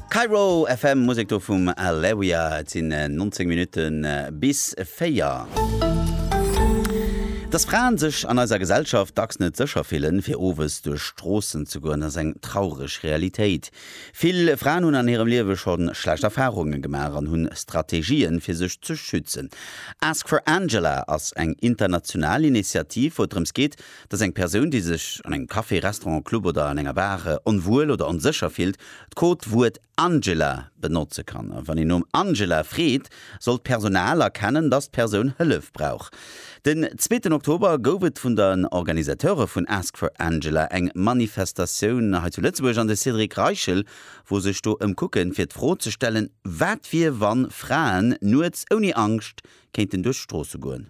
Kairo FM, Musek do vum Aleria. Et sinn 19 Minutten bis 4. Dass Fraen sech an eiser Gesellschaft dacks net sécher fillen, fir owes duerch d'Stroossen ze goen, ass eng traureg Realitéit. Vill Fraen hunn an hirem Liewe scho schlecht Erfarunge gemaach an hunn Strategien, fir sech ze schützen. Ask for Angela ass eng international Initiativ, wou et drëms geet, dass eng Persoun, déi sech an engem Café, Restaurant, Club oder an enger Bar onwuel oder onsécher fillt, d'Codewuert Angela benotze kann. A wann een nom Angela freet, soll d'Personal erkennen, dass d'Persoun Hëllef brauch. Den zweeten Oktober gouf et vun den Organisateure vun Ask for Angela eng Manifestatioun hei zu Lëtzebuerg an de Cédric Reichel wou sech do ëmkucken, fir d'Fro ze stellen, wat wier, wann Fraen nuets ouni Angscht kéinten duerch d'Stroosse goen.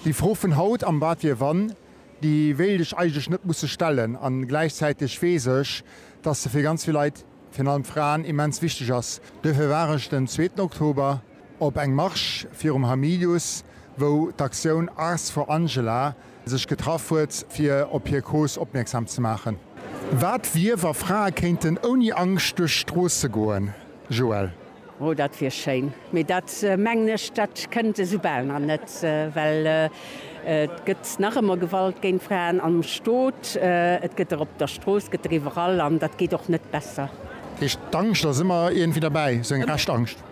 Déi Fro vun haut, am Wat wier wann, déi wéilt ech eigentlech net musse stellen. A gläichzäiteg weess ech, dass se fir ganz vill Leit, virun allem Fraen, immens wichteg ass. Duerfir war ech den zweeten Oktober op engem Marsch virum Hamilius, wou d'Aktioun Ars for Angela sech getraff huet, fir op hir Cause opmierksam ze maachen. Wat wier, wa Frae kéinten ouni Angscht duerch d'Stroosse goen? Joëlle. Oh, dat wier schéin, mee dat mengen ech, dat kënnt esou bal nach net, well et gëtt nach ëmmer Gewalt géint Fraen am Stot, et gëtt der op der Strooss, gëtt der iwwerall, an dat geet och net besser. Heescht, d'Angscht ass ëmmer iergendwéi derbäi, sou eng Rescht-Angscht?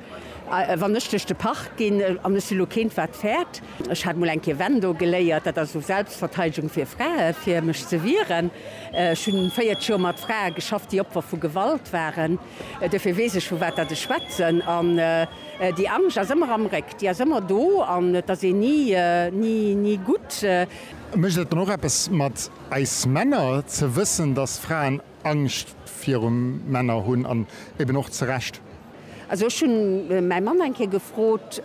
Wann ech duerch de Park ginn, an ech si lo keent, wat fäert, ech hat mol eng Kéier Wendo geléiert, dat ass esou Selbstverteidigung fir Fraen, fir mech ze wieren, ech hunn 40 Joer mat Frae geschafft, déi Opfer vu Gewalt waren. Duerfir weess ech, vu wat datt ech schwätzen. An déi Angscht ass ëmmer am Réck, déi ass ëmmer do an et ass een ni, ni gutt. Mécht et dann och eppes mat eis Männer, ze wëssen, datt Fraen Angscht viru Männer hunn an eben och zu Recht? Also ech hunn mäi Mann eng Kéier gefrot,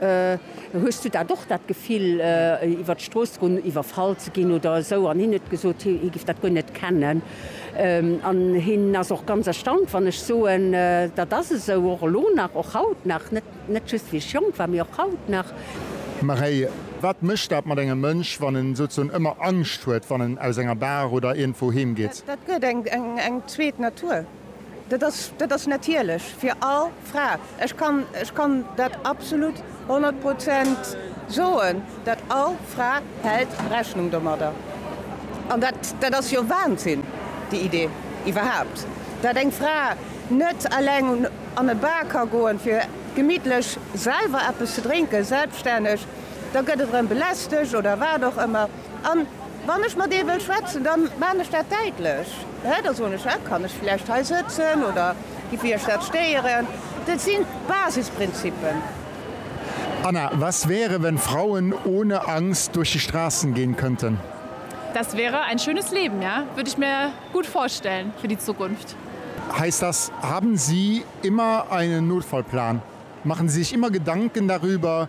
Hues du dat och, dat Gefill, iwwert d'Strooss ze goen, iwwerfall ze ginn oder esou? An hien huet gesot, hie giff dat guer net kennen. An hien ass och ganz erstaunt, wann ech soen, dat ass esou, och elo nach, och haut nach, net just wéi ech jonk war, mee och haut nach. Maréi, Wat mécht dat mat engem Mënsch, wann en souzesoen ëmmer Angscht huet, wann en aus enger Bar oder iergendwou heem geet? Dat gëtt eng zweet Natur. Dat ass, dat ass natierlech fir all Fra. Ech kann, ech kann dat absolut honnert Prozent soen, dat all Fra hält Rechnung domadder. An dat, dat ass jo Wahnsinn, déi Idee iwwerhaupt, dat eng Fra net eleng an e Bar ka goen, fir gemittlech selwer eppes ze drénken, selbststänneg. Da gëtt et erëm belästegt oder wat och ëmmer. A wann ech mat ee wëll schwätzen, da maachen ech dat däitlech. Da soen ech, Här, kann ech vläicht hei sëtzen oder giff Iech dat stéieren? Dat si Basisprinzippen. Anna, Was wäre, wenn Frauen ohne Angst durch die Straßen gehen könnten? Das wäre ein schönes Leben, ja. Würde ich mir gut vorstellen für die Zukunft. Heißt das, haben Sie immer einen Notfallplan? Machen Sie sich immer Gedanken darüber,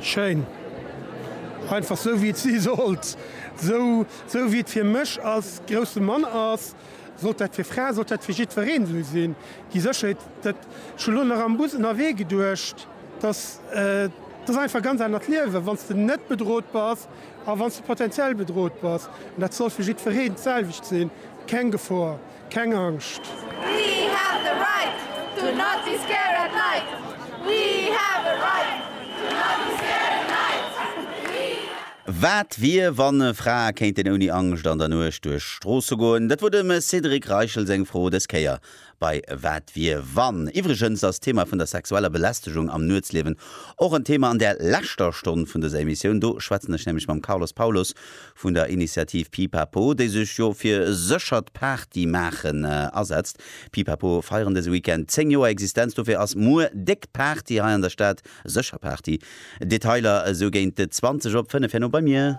Schéin. Einfach sou wéi et si sollt. Sou sou wéi et fir mech als grousse Mann ass, sollt dat fir Fraen, sollt dat fir jiddwereen sou sinn. Déi Sécherheet, dat, ech hu lo nach am Bus ënnerwee geduecht, dass, dat ass einfach e ganz anert Liewen, wann s de net bedrot bass a wann s de potentiell bedrot bass. An dat soll fir jiddwereen d'selwecht sinn, keng Gefor. Keng Angscht! We have the right to not be scared at night We have a right to not be scared at night We have. Wat wier, wann Frae kéinten ouni Angscht an der Nuecht duerch d'Stroosse goen? Dat wor dem Cédric Reichel seng Fro des Kéier bei Wat wier, wann? Iwwregens ass d'Thema vun der sexueller Belästegung am Nuetsliewen och en Thema an där leschter Stonn vun dëser Emissioun. Do schwätzen ech nämlech mam Carlos Paulos, vun der Initiativ Pipapo, déi sech jo fir e séchert Partymaachen asetzt. Pipapo feieren dëse Weekend 10 Joer Existenz, dofir ass muer déck Party hei an der Stad, sécher Party. Detailer esou géint 20 op 5 herno bei mir.